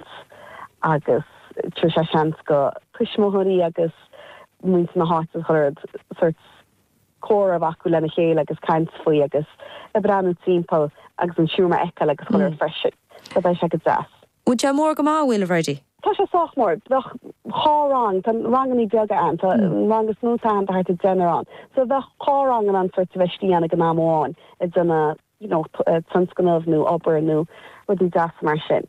Ghort agus tabharfaidh sé seans do thuismitheoirí agus muintir na háite a chur sort comhrá acu lena chéile agus caint faoi agus a bhreathnú timpeall agus an siúlma a fheiceáil agus a chur ort freisin. So beidh sé go deas. Bhfuil sé mór go maith, a bhfuil, a Bhairtle? Tá sé sách mór. Bheadh dhá rang, tá rangannaí beaga ann, tá an rang is mó atá ann tá thart ar deichniúr ann. So bheadh dhá rang in ann sort a bheith istigh ann ag an am amháin ag déanamh you know tionscnamh nó obair nó rudaí deasa mar sin.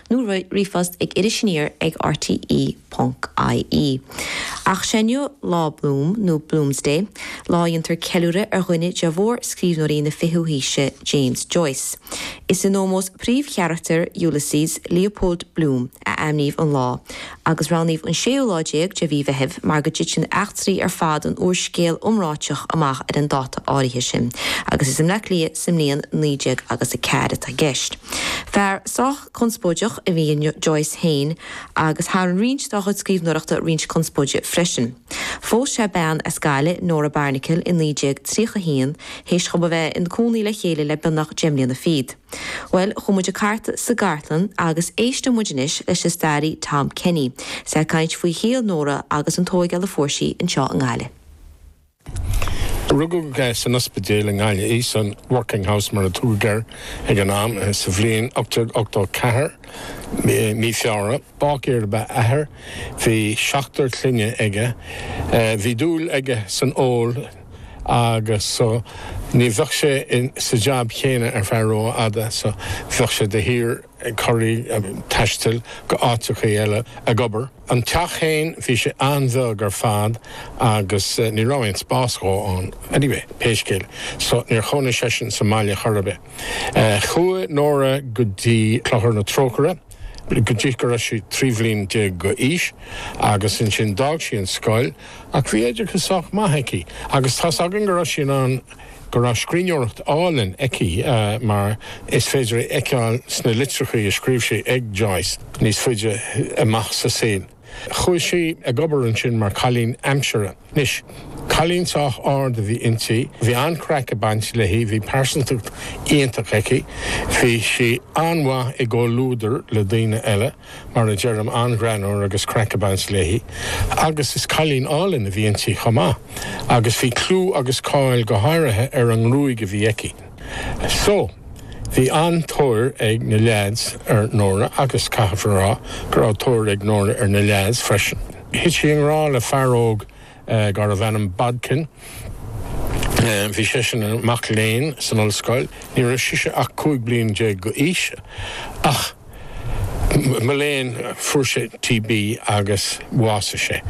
nó ríomhphost ag iris aniar ag RTÉ ponc ie. Ach sé inniu Lá Bloom, nó Bloomsday, lá a dhéantar ceiliúradh ar dhuine de mhórscríbhneoirí na fichiú haoise, James Joyce. Is in ómós do phríomhcharachtar Ulysses, Leopold Bloom, a ainmníodh an lá, agus roghnaíodh an séú lá déag de mhí Meithimh mar go dtiteann eachtraí ar fad an úrscéil iomráitigh amach ar an dáta áirithe sin, agus is i mBleá Cliath sa mbliain naoi déag agus a ceathair atá i gceist. Fear sách conspóideach a bhí in Joyce féin, agus tharraing roinnt dá chuid scríbhneoireachta roinnt conspóide freisin. Phós sé bean as Gaillimh, Nora Barnacle, i 1931, théis dhóib a bheith ina gcónaí le chéile le beagnach deich mbliana fichead. Bhuel, chuaigh muid ag cartadh sa gcartlann agus éistfidh muid anois leis an stairí Tom Kenny, is é ag caint faoi shaol Nóra agus an tógáil a fuair sí anseo i nGaillimh. Rugadh í san ospidéal i nGaillimh, san Working House mar a tugadh air ag an am, sa bhliain 1884, Mí Feabhra. Báicéir ab ea a hathair, bhí seachtar clainne aige. Bhí dúil aige san ól. agus so ní bheadh sé sa jab céanna ar feadh ró-fhada, so bheadh sé de shíor ag corraíl, ag taisteal go áiteachaí eile ag obair. An teach fhéin, bhí sé an-bheag ar fad agus ní raibh aon spás dhó ann. Anyway, pé scéal, so níor chónaigh seisean sa mbaile chor ar bith. Chuaigh Nóra go dtí Clochar na Trócaire. go dtí go raibh sí trí bhliain déag d'aois agus ansin d'fhág sí an scoil ach bhí oideachas sách maith aici agus tá's againn go raibh sí in ann, go raibh scríbhneoireacht álainn aici mar is féidir a fheiceáil sna litreacha a scríobh sí ag Joyce níos faide amach sa saol. Chuaigh sí ag obair ansin mar cailín aimsire. Anois, cailín sách ard a bhí inti, bhí an-chraic ag baint léi, bhí pearsantacht iontach aici, bhí sí an-mhaith i gcomhluadar le daoine eile, mar a deirim, an-ghreannmhar agus craic ag baint léi. Agus is cailín álainn a bhí inti chomh maith, agus bhí clú agus cáil go háirithe ar an ngruaig a bhí aici. So, bhí an-tóir ag na leaids ar Nóra agus caithfear a rá go raibh tóir ag Nóra ar na leaids freisin. Thit sí i ngrá le fear óg darbh ainm Bodkin. Bhí seisean ina mac léinn san ollscoil, ní raibh sise ach 15 bliain d'aois, ach, Mo léan, fuair sé TB agus bhásaigh sé,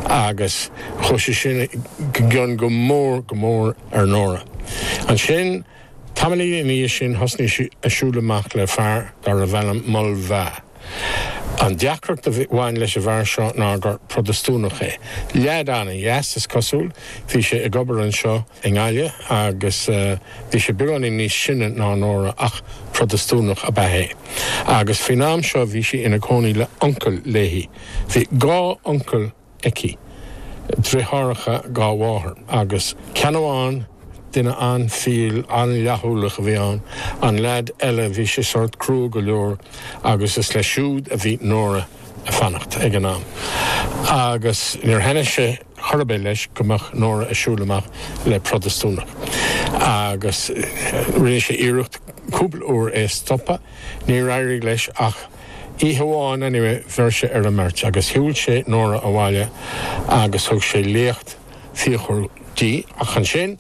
agus chuaigh sé sin i gcion go mór, go mór ar Nóra. Ansin, tamaillín ina dhiaidh sin, thosnaigh sí ag siúl amach le fear darbh ainm Mulvey. An deacracht a bhain leis an bhfear seo ná gur Protastúnach é. Leaid ana-dheas, is cosúil. Bhí sé ag obair anseo i nGaillimh agus. Bhí sé beagáinín níos sine ná Nóra ach Protastúnach ab ea é. Agus faoin am seo bhí sí ina cónaí le uncail léi. Bhí dhá uncail aici, driotháracha dá máthair, agus ceann amháin, duine an-fial, an-fhlaithiúlach a bhí ann. An leaid eile, bhí sé sórt crua go leor agus is leis siúd a bhí Nóra ag fanacht ag an am. Agus níor thaitnigh sé. Chor ar bith, leis, go mbeadh Nóra ag siúl amach le Protastúnach, agus rinne sé iarracht cúpla uair é a stopadh. Níor éirigh leis, ach oíche amháin, anyway, bheir sé ar an mbeirt, agus shiúil sé Nóra abhaile, agus thug sé léacht fíochmhar di, ach ansin,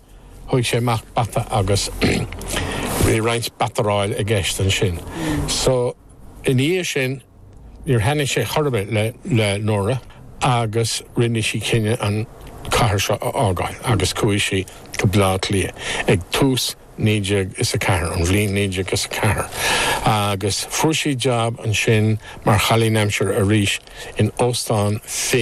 thóig sé amach bata, agus bhí roinnt bataráil i gceist ansin. So, ina dhiaidh sin. Níor thaitnigh sé chor ar bith le Nóra agus rinne sí cinneadh an chathair seo a fhágáil agus chuaigh sí go Bleá Cliath ag tús naoi déag is a ceathair, an bhliain naoi déag is a ceathair, agus fuair sí jab ansin mar chailín aimsire arís in Óstán Finn.